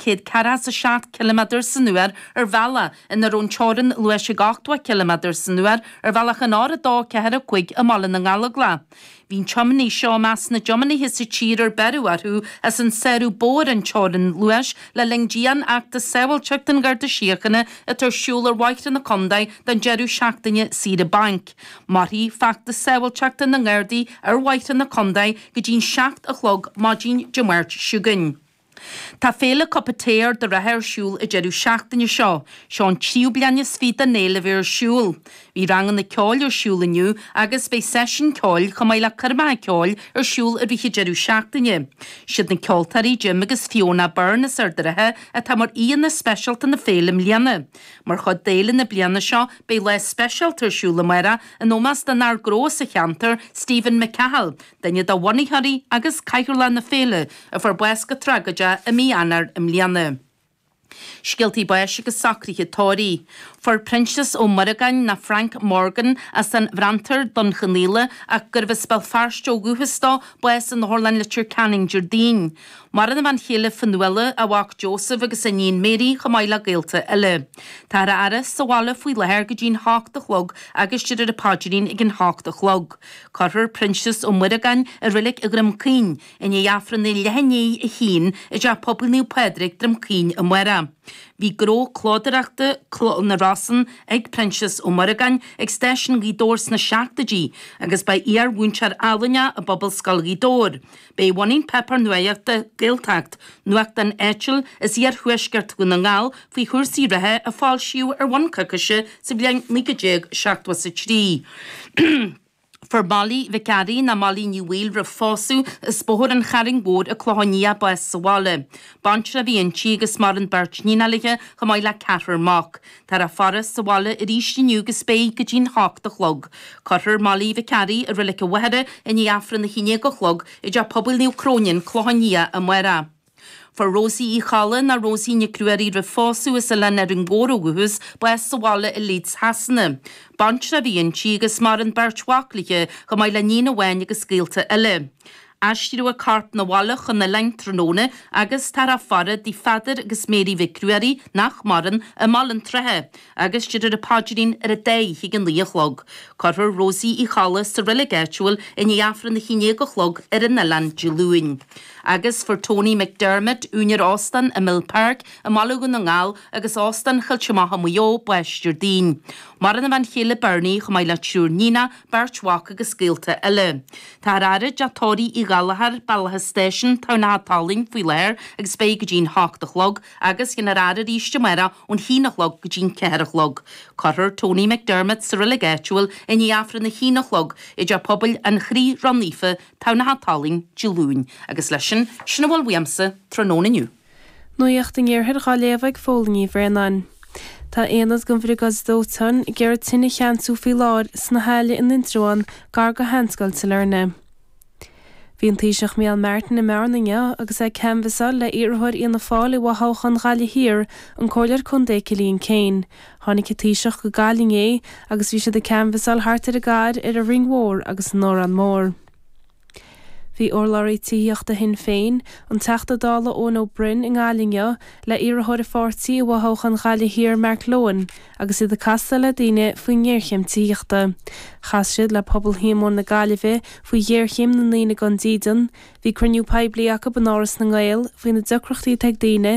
céad ceathracha a seacht km san uair ar bhealach ina raibh an teorainn luais ag ochtó km san uair ar bhealach an R2 4 5 i mBaile na nGallóglach. Bhí an tiomanaí seo i measc na dtiománaithe sa tír ar beireadh orthu as an sárú ba mhó ar an teorainn luais le linn dianfheachtas sábháilteachta an Gharda Síochana atá ar siúl ar bhóithre na Condae don deireadh seachtaine saoire bainc. Mairfidh feachtas sábháilteachta na nGardaí ar bhóithre na Condae go dtí'n seacht a chlog maidin Dé Máirt seo chugainn. Tá Féile Cup of Tae Ard an Rátha ar siúl an deireadh seachtaine seo. Seo an tríú bliain is fiche don fhéile a bheith ar siúl. Bhí ranganna ceoil ar siúl inniu agus beidh seisiún ceoil chomh maith le coirmeacha ceoil ar siúl i rith an deireadh seachtaine. Siad na ceoltóirí Jim agus Fiona Byrne as Ard an Rátha atá mar aíonna speisialta na féile i mbliana. Mar chuid d'fhéile na bliana seo beidh lá speisialta ar siúl amárach in ómós don fhear gnó sa cheantar, Stephen McCahill, duine de bhunaitheoirí agus cathaoirleach na féile, a fuair bás go tragóideach i mí Eanáir i mbliana. Scéaltaí báis agus socruithe tórraimh. Fuair Proinsias Ó Muireagáin nó Frank Morgan as an Bhréantar, Dún Cionnaola, ach gurbh as Béal Feirste ó dhúchas dó, bás in Otharlann Leitir Ceanainn Déardaoin. Maireann a bhean chéile Fionnuala, a mhac Joseph agus a iníon Mary chomh maith le gaolta eile. Táthar á fhaire sa bhaile faoi láthair go dtí an hocht a chlog agus déarfar an paidrín ag an hocht a chlog. Cuirfear Proinsias Ó Muireagáin i Reilig Dhroim Caoin i ndiaidh Aifreann a leath i ndiaidh a haon i dTeach Pobail Naomh Pádraig, Droim Caoin amárach. Bhí gnó clódaireachta, Cló na Rosann, ag Proinsias Ó Muireagáin ag Stáisiún Ghaoth Dobhair sna seachtoidí agus ba iar-mhúinteoir ealaíne i bPobalscoil Ghaoth Dobhair, Ba é a bhunaigh an páipéar nuachta Gaeltacht, nuachtán áitiúil as iarthuaisceart Dhún na nGall faoi chúrsaí reatha a foilsíodh ar bhonn coicíse sa bhliain 1973. Fuair Mollie Mhic Fhearraigh, nó Mollie Ní Bhaoill, roimh phósadh as Bóthar an Chairn Mhóir An Clochán Liath bás sa bhaile. Baintreach a bhí inti agus maireann beirt níonacha léi chomh maith le ceathrar mac. Táthar á faire sa bhaile arís inniu agus beidh go dtí'n h-ocht a chlog. Cuirfear Molly Mhic Fhearraigh i Reilig an Mhachaire i ndiaidh Aifreann a h-aon déag a chlog i dTeach Pobail Naomh Cróine, An Clochán Liath, amárach. Fuair Rosie Uí Cholla nó Rosie Nic Ruairí roimh phósadh as Oileán Árainn Mhór ó dhúchas bás sa bhaile i Leeds Shasana. Baintreach a bhí inti agus maireann beirt mhac léi, chomh maith le níon amháin agus gaolta eile. Aistríodh a corp 'na bhaile chun an oileáin tráthnóna agus táthar á faire i dtigh Pheadair agus Mary Mhic Ruairí, nach maireann, i mBaile an tSratha agus déarfar an paidrín ar an dá oíche ag a naoi a chlog. Cuirfear Rosie Uí Cholla sa reilig áitiúil i ndiaidh Aifreann a haon déag a chlog ar an oileán Dé Luain. Agus fuair Tony McDermott, úinéir Óstán an Mill Park i mBaile Dhún na nGall agus Óstán Choillte Mach i Maigh Eo, bás Déardaoin. Maireann a bhean chéile Bernie, chomh maith le triúr níonacha, beirt mhac agus gaolta eile. Táthar á fhaire i dTeach Tórraimh Uí Ghallchóir, Bealach an Stáisiúin, Tamhnach an tSalainn faoi láthair agus beidh go dtí'n hocht a chlog agus beifear á fhaire arís amárach ón haon a chlog go dtí'n ceathair a chlog. Cuirfear Tony McDermott sa reilig áitiúil i ndiaidh Aifreann a haon a chlog i dTeach Pobail an Chroí Ró-Naofa, Tamhnach an tSalainn, Dé Luain agus leis sin, sin a bhfuil uaimse tráthnóna inniu. Nuacht an Iarthair dhá léamh ag Fódhla Ní Bhraonáin. Tá aonad den Bhriogáid Dóiteáin ag iarraidh tine a cheansú faoi láthair sna hAille in Indreabhán gar go Sheanscoil Sailearna. Bhí an Taoiseach Micheál Martin i mBearna inniu agus é ag canbhasáil le iarrthóir Fhianna Fáil i bhfothoghchán Ghaillimh Thiar, an Comhairleoir Contae Cillian Keane. Tháinig an Taoiseach go Gaillimh inné agus bhí siad ag canbhasáil thart ar an gcathair, ar an Rinn Mhór agus in Órán Mór. Bhí urlabhraí tithíochta Shinn Féin, an Teachta Dála Eoin Ó Broin, i nGaillimh inniu le iarrthóir a pháirtí i bhfothoghchán Ghaillimh Thiar Mark Lohan agus iad ag casadh le daoine faoin ngéarchéim tithíochta. Chas siad le Pobal Shíomóin na Gaillimhe faoi ghéarchéim na ndaoine gan dídean, bhí cruinniú poiblí acu in Áras na nGael faoi na deacrachtaí atá ag daoine